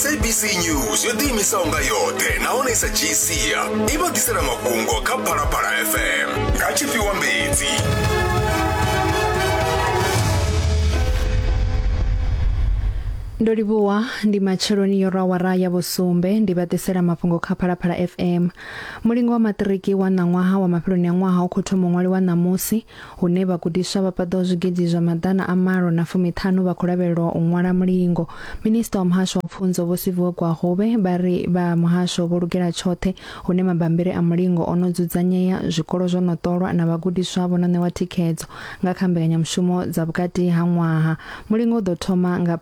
sabc news yo ḓiimisaho nga yoṱhe nahone i sa dzhii sia i vha ḓisela mafhungo kha phalaphala fm nga tshifhiwa mbedzi ndo livhuwa ndi matsheloni yo rawara ya vhusumbe ndi vha ḓisela mafhungo kha phalaphala fm mulingo wa maṱiriki wa ṋaṅwaha wa mafheloni a ṅwaha u khou thoma ṅwali wa ṋamusi hune vhagudiswa vha paḓaho zwigidi zwa maḓana a malo na fumiṱhanu vha khou lavhelelwa u ṅwala mulingo. Minista wa muhasho wa pfunzo Vho Siviwe Gwahove vha ri vha muhasho vho lugela tshoṱhe hune mabambiri a mulingo o no dzudzanyea, zwikolo zwo no ṱolwa na vhagudiswa vho no ṋewa thikhedzo nga kha mbekanyamushumo dza vhukati ha ṅwaha. Mulingo u ḓo thoma nga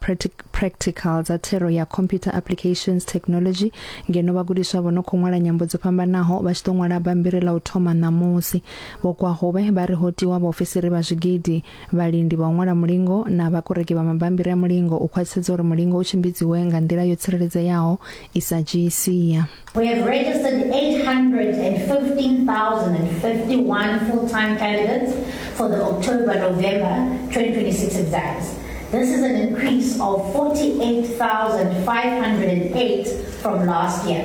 practical dza thero ya Computer Applications Technology ngeno vhagudiswa vho no khou ṅwala nyambo dzo fhambanaho vha tshi ḓo ṅwala bambiri ḽa u thoma ṋamusi. Vho Kwahube vha ri ho tiwa vhaofisiri vha zwigidi, vhalindi vha u ṅwala mulingo na vhakoreki vha mabammbiri a mulingo u khwaṱhisedza uri mulingo u tshimbidziwe nga nḓila yo tsireledzeaho i sa dzhii sia. We have registered 815,051 full-time candidates for the October-November 2026 exams. This is an increase of 48,508 from last year.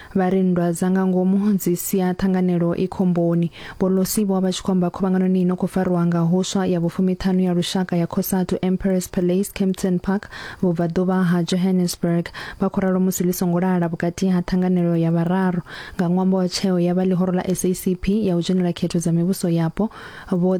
Vha ri nndwa dza nga ngomu dzi sia ṱhanganelo i khomboni. Vho Losi vho vha vha tshi khou amba khuvhanganoni i no khou farwa nga huswa ya vhufumiṱhanu ya lushaka ya Cosatu Emperor's Palace, Kempton Park, vhubvaḓuvha ha Johannesburg. Vha khou ralo musi ḽi songo lala vhukati ha ṱhanganelo ya vhararu nga ṅwambo wa tsheo ya vha ḽihoro ḽa SACP ya u dzhenela khetho dza mivhuso yapo, Vho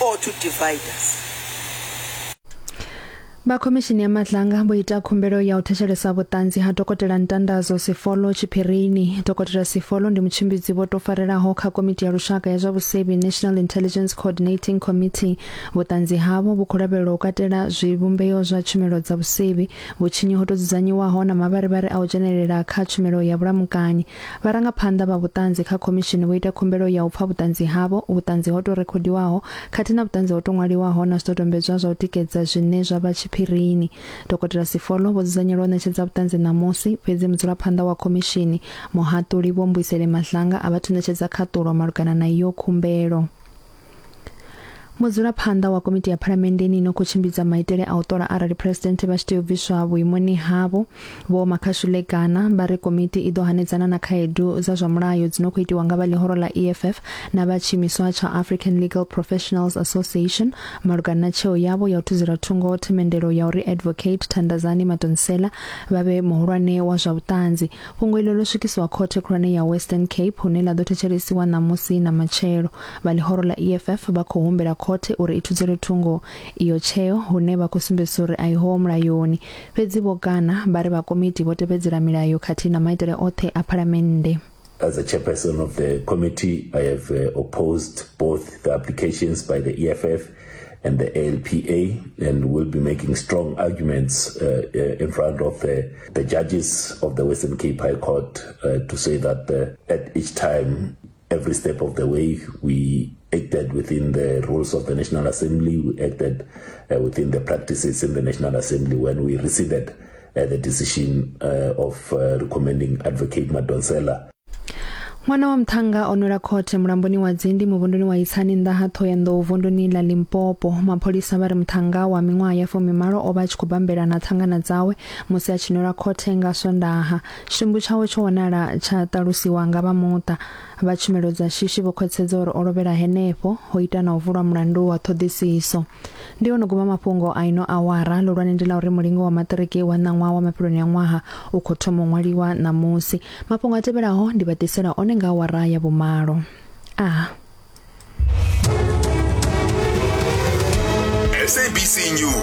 or to divide us. vha khomishini ya madlanga vho ita khumbelo ya u thetshelesa vhuṱanzi ha dokotela ntandazo sifolo tshiphirini dokotela sifolo ndi mutshimbidzi vho to farelaho kha komiti ya lushaka ya zwa vhusevhi national intelligence coordinating committee vhuṱanzi havho vhu khou lavhelelwa u katela zwivhumbeo zwa tshumelo dza vhusevhi vhutshinyi ho to dzudzanyiwaho na mavharivhari a u dzhenelela kha tshumelo ya vhulamukanyi Vharangaphanḓa vha vhuṱanzi kha khomishini vho ita khumbelo ya u pfa vhuṱanzi havho, vhuṱanzi ho tou rekhodiwaho khathihi na vhuṱanzi ho tou ṅwaliwaho na zwidodombedzwa zwa u tikedza zwine zwa vha tshiphirini. Dokotela Sifolo vho dzudzanyelwa u ṋetshedza vhuṱanzi ṋamusi, fhedzi mudzulaphanḓa wa khomishini, Muhaṱuli Vho Mbuyiseli Mahlangu a vha thu ṋetshedza khaṱulo malugana na iyo khumbelo. mudzulaphanḓa wa komiti ya phalamenndeni ino khou tshimbidza maitele a u ṱola arali phresidennde vha tshi tea u bviswa vhuimoni havho vho makhashule gana vha ri komiti i ḓo hanedzana na khaedu dza zwa mulayo dzi no khou itiwa nga vha ḽihoro ḽa eff na vha tshiimiswa tsha african legal professionals association malugana na tsheo yavho ya u thuzela thungo themendelo ya uri advocate thandazani matonsela vha vhe muhulwane wa zwa vhuṱanzi fhungo iḽo ḽo swikisiwa khothe khulwane ya western cape hune ḽa ḓo thetshelesiwa ṋamusi na matshelo Vha ḽihoro ḽa EFF vha khou humbela khothe uri i thudzelwe thungo iyo tsheo hune vha khou sumbedzisa uri a ihoho mulayoni. Fhedzi vho kana vha ri vha komiti vho tevhedzela milayo khathihi na maitele oṱhe a Phalamennde. As a chairperson of the committee, I have uh, opposed both the applications by the EFF and the ALPA and will be making strong arguments uh, uh, in front of uh, the judges of the Western Cape High Court uh, to say that uh, at each time Every step of the way, we acted within the rules of the National Assembly, we acted uh, within the practices in the National Assembly when we rescinded uh, the decision uh, of uh, recommending Advocate Madonsela ṅwana wa muṱhanga o nwela khothe mulamboni wa dzindi muvhunduni wa itsani nnḓa ha ṱhohoyanḓou vunduni ḽa limpopo mapholisa vha ri muṱhanga wa miṅwaha ya fumimalo o vha a tshi khou bambela na ṱhangana dzawe musi a tshi nwela khothe nga swondaha Tshitumbu tshawe tsho wanala tsha ṱalusiwa nga vha muṱa. Vha tshumelo dza shishi vho khwathsedza uri o lovhela henefho, ho ita na u vulwa mulandu wa ṱhoḓisiso. Ndi ono guma mafhungo a ino awara, ḽihulwane ndi ḽa uri mulingo wa maṱiriki wa ṋaṅwaha wa mafheloni a ṅwaha u khou thoma u ṅwaliwa ṋamusi. Mafhungo a tevhelaho ndi vha ḓisela one nga awara ya vhumalo. A. SABC News.